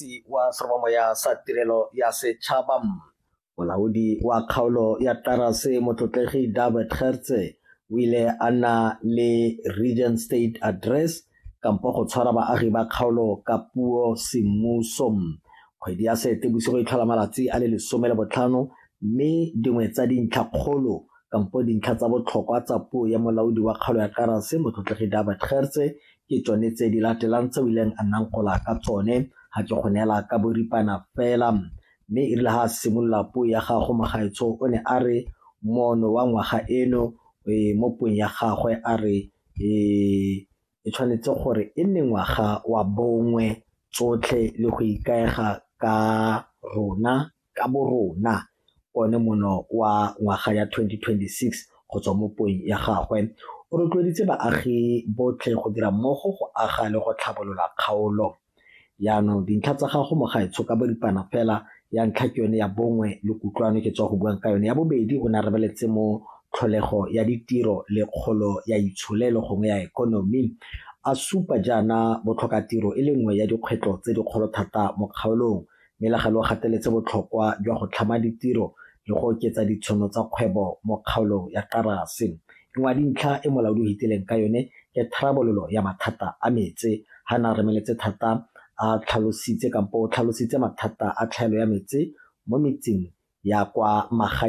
motsi wa seromamoya sa tirelo ya setšhaba molaodi wa kgaolo ya tarase motlotlegi david gertse o ile a nna le region state address kampo go tshwara baagi ba kgaolo ka puo semmuso kgwedi ya sete bosigo e tlhola malatsi a le lesome le botlhano mme dingwe tsa dintlha kgolo kampo dintlha tsa botlhokwa tsa puo ya molaodi wa kgaolo ya tarase motlotlegi david gertse ke tsone tse di latelang tse o ileng a nnang gola ka tsone ga ke go neela ka boripana fela mme e rile ga a simolola puo ya gago mogaetsho o ne a re mono wa ngwaga eno e, mo puong ya gagwe a re e, e tshwanetse gore e nne ngwaga wa bongwe tsotlhe le go ikaega ka rona ka borona one mono wa ngwaga ya 2026 go tswa mo puong ya gagwe o rotloeditse baagi botlhe go dira mmogo go aga le go tlhabolola kgaolo yaanong dintlha tsa gago mo gaetsho ka boripana fela ya ntlha ke yone ya bongwe le kutlwano ke tswa go buang ka yone ya bobedi o ne a rebeletse mo tlholego ya ditiro le kgolo ya itsholelo gongwe ya ekonomi a supa jaana botlhokatiro e le nngwe ya dikgwetlho tse dikgolo thata mo kgaolong Melagelo o gateletse botlhokwa jwa go tlhama ditiro le go oketsa ditshono tsa kgwebo mo kgaolong ya Xarasi. E nngwe ya dintlha e molaodi o hitileng ka yone ke tharabololo ya mathata a metse. Ha ne a remeletse thata a tlhalositse kampo o tlhalositse mathata a tlhaelo ya metse mo metseng ya kwa magaeng.